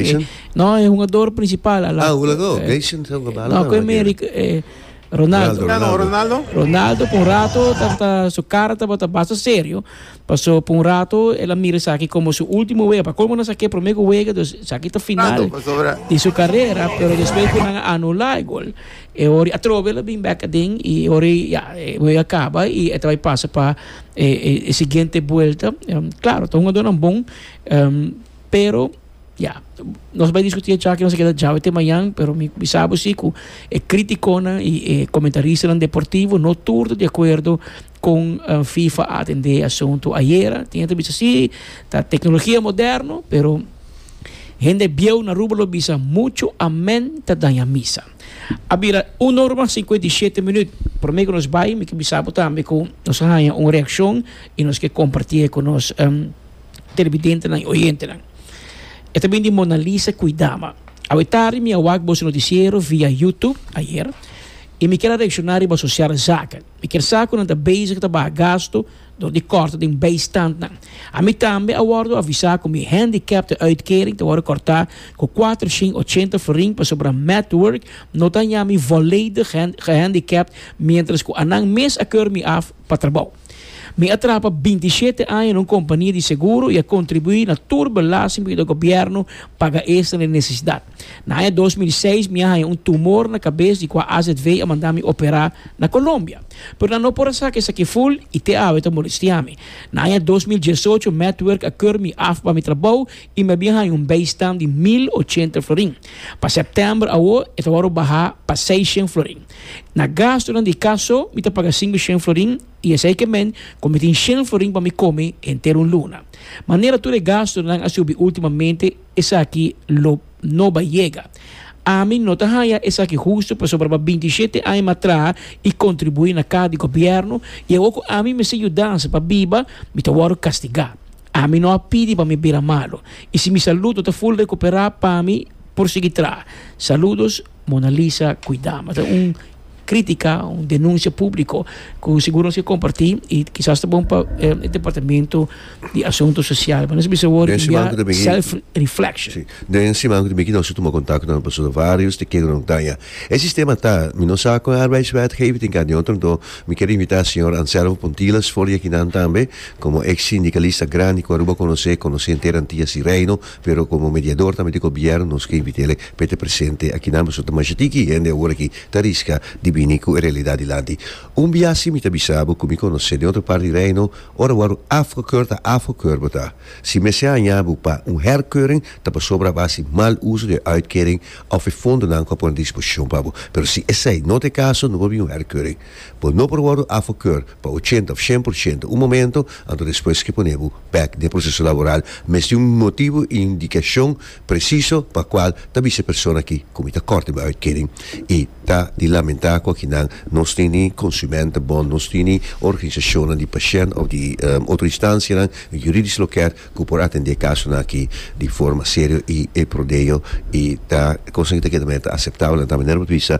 Gation? No, e hungador principal. Ala, Ah, Hulado, eh, Gation sa jugaba ala. No, kue me Ric- eh, Ronaldo. Ronaldo. Ano, Ronaldo? Ronaldo por un rato tabata su cara tabata basta serio. Paso por un rato él a mira esaki como su último wega. Pa colmo nan sa que primer wega, dus esaki ta final Ronaldo, paso ahora. di su carrera, pero después cu nan a anula e gol. E ori a trobe la bin back adin y ori ya e wega caba y e ta bai pasa pa e, e, e siguiente vuelta. Em, claro, ta hungadornan bon, em, pero Ya, nos bai diskutí e chak nos a keda djawe te mañan, pero mi bisa bo si ku e kritikonan i e komentaristanan deportivo no tur ta di akuerdo kon fifa a atendé e asuntu ayera. Tin hende ta bisa sí, ta teknologia moderno, pero hende bieu na Aruba lo bisa muchu amèn ta daña misa. A bira un ora sinkuenta i shete minüt. Promé ku nos bai mi ke bisa bo tambe ku nos a haña un reakshon i nos ke kompartié ku nos. televidentenan i oyentenan. E ta bin di Mona Lisa Cuidama. Awe tardi mi a wak boso noticiero via YouTube, ayer, i mi kier a reacciona riba asociar zaken. Mi kier sa cu nan ta bezig ta baha gasto dor di corta den bijstandnan. Ami tambe a wordo avisa cu mi handicaptenuitkering ta wordo corta cu cuatroshint ochenta florin pasobra Medwork no ta haña mi volledig gehandicapt mientras cu anan mes a keur mi af pa trabou. Mi a traba binti shete aña na un kompania di seguro i a kontribuí na tur belasting pasobra e gobièrnu paga estra den nesesidat. Na aña dos mil seis mi a haña un tumor na kabes di kua azv a manda mi operá na Kolombia. Pero nan no por a sa ku esaki ful i te awe ta molestiá mi. Na aña dos mil diesocho Medwerk a keur mi af pa mi trabou i mi a bin haña un bijstand di mil ochenta florin. Pa sèptèmber awor e tabata por bahá pa seishen florin. Na gastunan di kas so, mi ta paga sinku shen florin, i esei ke men, kon mi tin shen florin pa mi kome henter un luna. Manera tur e gastunan a subi ultimamente, esaki lo no bai yega. Ami no ta haya esaki hustu pasobra pa binti shete aña mi a traha i kontribuí na kas di gobièrnu, i awor ku ami mester yudansa pa biba, mi ta wòrdu kastigá. Ami no a pidi pa mi bira malu, i si mi salud no ta ful rekuperá pa mi por sigui traha. Saludos. Mona Lisa, cuida, mas ta un critica, un denuncia publico cu seguro nos a comparti y kisas ta bon pa eh, e departamento di asunto social. Nos bisa wor Den siman ku ta beki- self reflection. Sí. Den siman ku ta beki nos a tuma kontakto nan pasobra varios di kende nan daña. E sistema ta, mi no sa kon e arbeidswetgeving tin ka di otro enton mi kier invitá señor Anselmo Pontila sfor di akinan tambe komo ex sindikalista grandi ku Aruba konosé, konosé henter Antias di Reino, Pero komo mediador tambe di gobièrnu nos ke invit'é pa e ta presente akinan pasobra ta masha tiki hende awor aki ta riska di bini ku e realidat dilanti. Un bia así mi ta bisa bo ku mi konos'é den otro parti di Reino, ora bo a ru afgekeur ta afgekeur bo ta. Si mester haña bo pa un herkeuring ta pasobra bo a hasi mal uso di e uitkering òf e fondonan ku a pone a disposishon pa bo. Pero si esei no ta e kaso no por bin un herkeuring. Bo no por wòrdu afekeur pa ochenta of shen por shento un momento, anto despues ke pone bo bèk den proseso laboral mes tin un motibu i indikashon presiso pa kual ta bisa e persona aki ku mi ta kòrte bo e uitkering. I ta di lamentá ku akinan nos tin ni konsumentebond, nos tin ni organisashonnan di pashènt òf di otro instansianan yuridisch loker ku por atendé e kasonan aki di forma serio i e prodeo i ta kosnan ku ta keda manera ta aseptabel, ta manera bo ta bisa.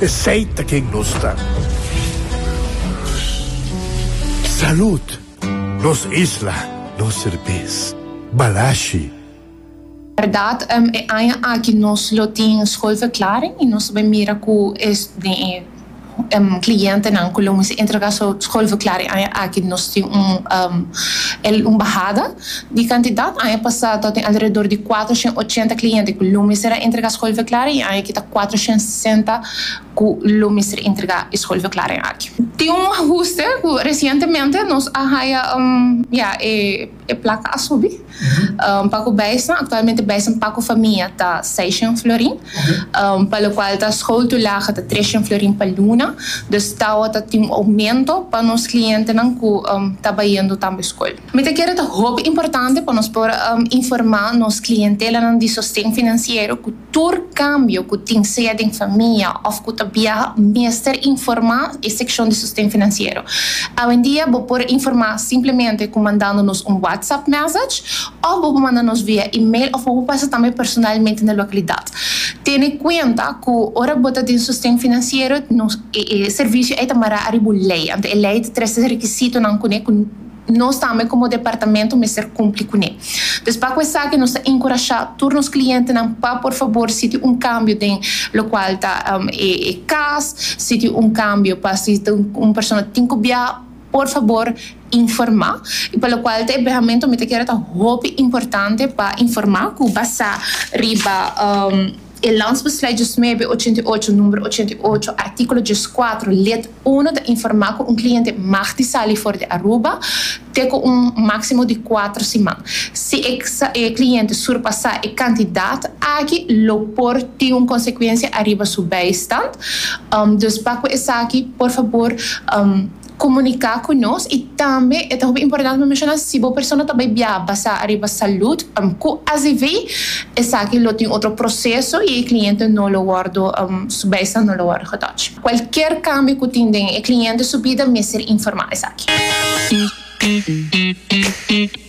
Esey ta ken nos ta. Salud! Nos isla, nos serbes. Balashi. Berdad em e aña aki nos lo tin schoolverklaring y nos ta bay mira cu es den e em clientenan cu lo mester entrega su schoolverklaring aña aki nos tin un em el un bahada. Di kantidat aña pasá ta tin alredor di kuater shen ochenta kliente ku lo mester a entregá skolverklaring i aña aki ta kuater shen sesenta ku lo mester entregá e skolverklaring aki. Tin un ahuste ku resientemente nos a haya ya e plaka a subi pa ku bijsnan. Aktualmente bijsnan pa ku famia ta seis shen florin pa lokual ta skoltulagen ta tres shen florin pa luna. Dus tawa ta tin un oumento pa nos klientenan ku ta bayendo tambe skol. Mi ta kere ta hopi importante pa nos por informá nos klientelanan di sosten finansiero ku tur kambio ku tin sea den famia òf ku ta biaha mester informá e sekshon di sosten finansiero. Awendia bo por informá simplemente ku mandando nos un WhatsApp mèsech òf bo por manda nos via email òf bo por pasa tambe personalmente na lokalidat. Tene kuenta ku ora bo ta den sosten finansiero nos e servisio ei ta mará ariba un lei, anto e lei ta trese e rekisitonan kuné ku. Nos tambe komo departamento mester kumpli kuné. Pues pa ku esaki nos ta enkurashá tur nos klientenan pa por fabor si tin un kambio den lokual ta e kas, si tin un kambio pa si un persona tin ku biaha por fabor informá. I pa lokual ta e behamentu mi ta kere ta hopi importante pa informá ku basá riba. E Landsbeslui diesnuebe ochenta i ocho, numero ochenta i ocho, artíkulo dieskuater, lid uno ta informá ku un kliente mag di sali for di Aruba te ku un máksimo di kuater siman. Si e e kliente surpasá e kantidat aki lo por tin un konsekuensia ariba su beistand. Dus pa ku esaki por fabor komuniká ku nos i tambe e ta hopi importante pa menshona si bo persona ta bai biaha basá ariba salud ku azv esaki lo tin otro proseso i e kliente no lo wòrdu su bijstand no lo wòrdu getòch. Kualkier kambio ku tin den e kliente su bida mester informá esaki.